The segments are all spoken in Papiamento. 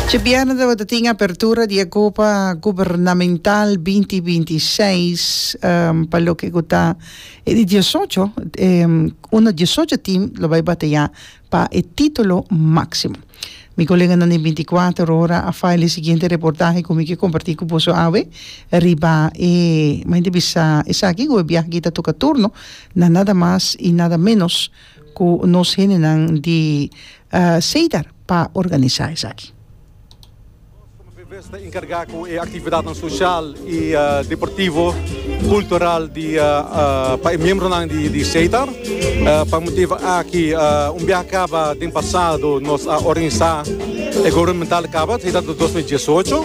Dje bièrnè tabata tin apertura di e Copa Gubernamental binti binti seis pa loke ku ta e di diesocho unda diesocho tim lo bai bateyá pa e titulo máksimo. Mi koleganan den binti kuater ora a faila e siguiente reportahe ku mi ke kompartí ku boso awe riba e mi ta bisa esaki ku e biaha aki ta toka turno na nada mas i nada ménos. Cu nos hendenan di Cedar pa organisa esaki. Nos como Vvs ta encarga cu e actividadnan social y deportivo, cultural di pa e miembronan di Cedar. Pa motivo aki un biaha caba den pasado nos a organisa e gubernamental caba, Cedar dos mil diesocho.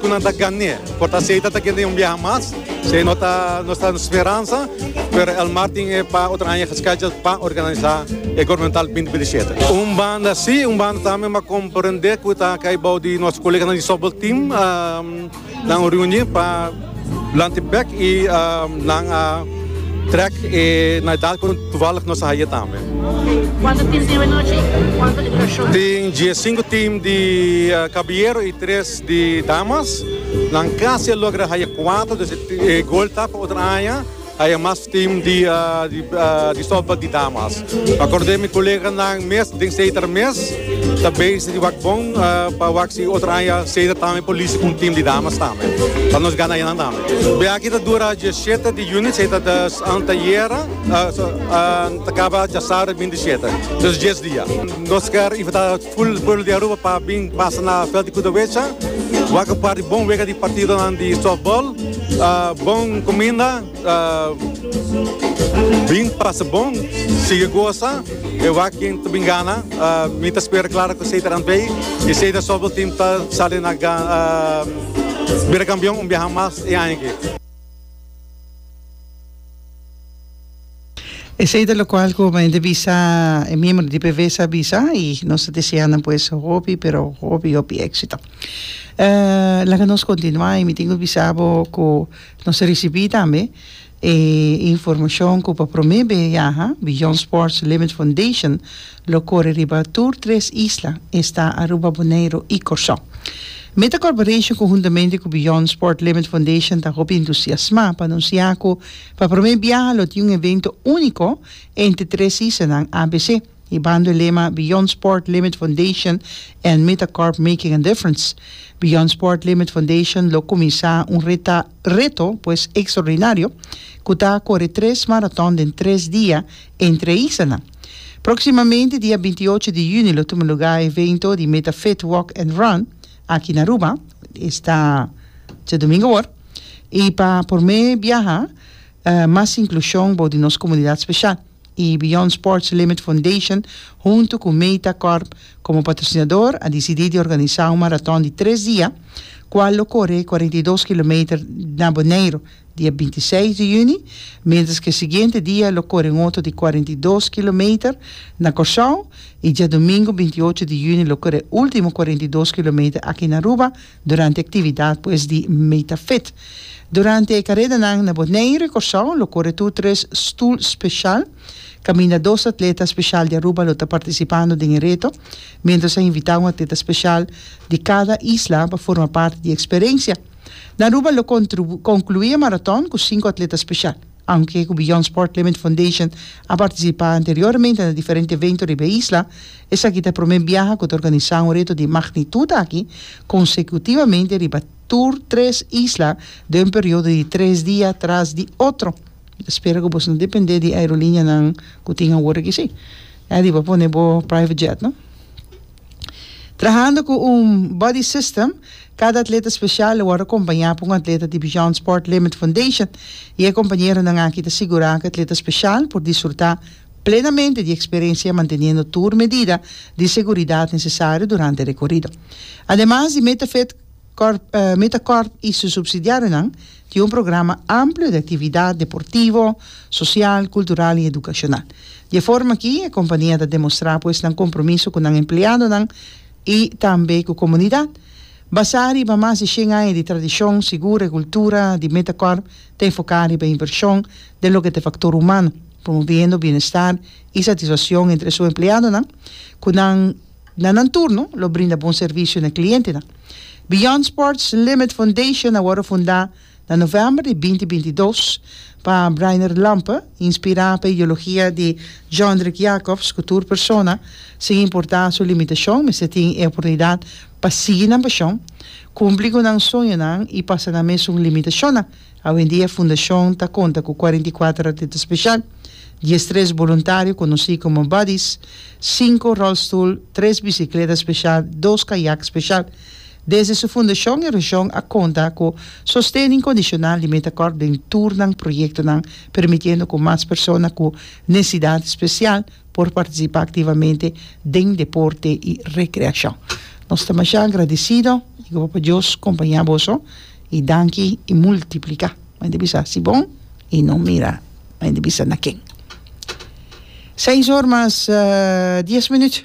Cu nan ta gan'e. Por ta asey ta ta kende un biaha mas. Sey no ta nos ta speransa, pero el mar tin e pa otro aña gescheduled pa organisa e Governamental binti binti shete. Un banda si, un banda tambe m'a comprende cu ta cay bao di nos coleganan di softball team, nan un reuni pa. Blante bek y nan a trek e na edad cu toevallig nos a haye tambe. Cuanto team tin anochi y cuanto e dura show? Tin diesinco team di caballero y tres di damas. Nan casi a logra haye cuatro, dus e gol ta pa otro aña. Haya mas team di di sopa di damas. Akordé mi koleganan mes den Seiter mes ta bezi di wak bon pa wak si otro aña Seiter tambe por listi ku un team di damas tambe pa nos gana enan tambe. Biaha ta dura diesiete di yuni Seiter ta antayera ta kaba djasaru bintisiete. Dus dies dia. Nos kier invitá. Full pueblo di Aruba pa bin pasa na veld di Cudahuecha. Wak par di bon wega di partidonan di softball. Bon cuminda, bin pasa bon, sigui goza. E wak ken ta bin gana, mi ta spera clara cu Seita Randwee y Seita Softball Team ta sali na bira campeon un biaha mas e aña aki. Esei ta locual cu men ta bisa, e miembro di PV sa bisa y nos ta desea nan pues hopi pero hopi hopi exito. Laga nos continua y mi tin cu bisa bo cu nos a ricibi tambe e informacion cu pa prome be yaha Beyond Sports Limit Foundation lo core riba tur tres isla, esta Aruba, Boneiro y Corso. Meta Corporation conhuntamente cu Beyond Sport Limit Foundation ta hopi entusiasma pa anuncia cu Pa promé biaha lo tin un evento úniko entre tres isanan abc, i bando e lema Beyond Sport Limit Foundation and Metacorp Making a Difference. Beyond Sport Limit Foundation lo kuminsá un reta reto pues ekstraordinario ku ta kore tres maraton den tres dia entre e isanan. Próksimamente dia binti ocho di yüni lo tuma lugá e evento di Meta Fit Walk and Run Aki na Aruba esta dje domingo awor y pa por me biaha mas inclusion bo di nos comunidad special y Beyond Sports Limit Foundation hunto cu Meta Corp como patrocinador a dicidi di organisa un maraton di tres dia cual lo core cuarenta y dos kilometer na Boneiru Di e binti seis di yüni, mientras ku e siguiente dia lo kore un oto di kuarenta i dos kilometer na Kòrsou i djadumingu binti ocho di yüni lo kore e último kuarenta i dos kilometer aki na Aruba durante e aktividat pues di Metafit. Durante e karedanan na Boneiru i Kòrsou lo kore tur tres Stoel Special. Kaminda dos atleta special di Aruba lo ta partisipando den e reto, mientras a invitá un atleta special di kada isla pa forma parti di e eksperensia. Na Aruba lo conclui e maraton cu cinco atleta special. Aunke cu Beyond Sport Limit Foundation a participa anteriormente na diferente evento riba e isla, esaki ta e prome biaha cu ta organisa un reto di magnitud aki consecutivamente riba tur tres isla den un periodo di tres dia tras di otro. Ta spera cu boso no depende di aerolineanan cu tin awor aki si. Adi bo a pone bo private jet no. Trahando cu un Buddy System, cada atleta special a word acompaña pa un atleta di Beyond Sport Limit Foundation y e compañeronan aki ta sigura cu atleta special por disfruta plenamente di experiencia manteniendo tur medida di seguridad necesario durante e recorrido. Ademas di Meta Fit. Corp, Meta Corp i su subsidiarionan tin un programa amplio di actividad deportivo, social, cultural i educacional. Di e forma aki e compania ta demostra pues nan compromiso cu nan empleadonan i tambe cu comunidad. Basá riba mas di shen aña di tradicion, sigur e cultura di Meta Corp ta enfoca riba inversion den loke ta e factor humano, promoviendo bienestar i satisfaccion entre su empleadonan cu nan Na nan turno lo brinda bon servisio na klientenan. Beyond Sports Limit Foundation a wòrdu fundá na novèmber di binti binti i dos pa Breiner Lampe, inspirá pa e ideologia di Jondrik Jacobs ku tur persona, sin importá su limitashon, mester tin e oportunidat pa sigui nan pashon, kumpli ku nan soñonan i pasa nan mes un limitashonnan. Awendia fundashon ta konta ku kuarenta i kuater atleta speshal, dies tres boluntario konosí komo Buddies, sinku ròlstoel, tres bisikleta speshal, dos kayak speshal. Desde su fundashon e reshon a konta ku sosten inkondishonal di Metakòrp den tur nan proyektonan, permitiendo ku mas persona ku nesesidat spesial por partisipá aktivamente den deporte i rekreashon. Nos ta masha agradesido i ku Papa Dios kompañá boso. I danki i multipliká. Mei di bisa si bon i no mira mei di bisa na ken. Seis or mas dies minut.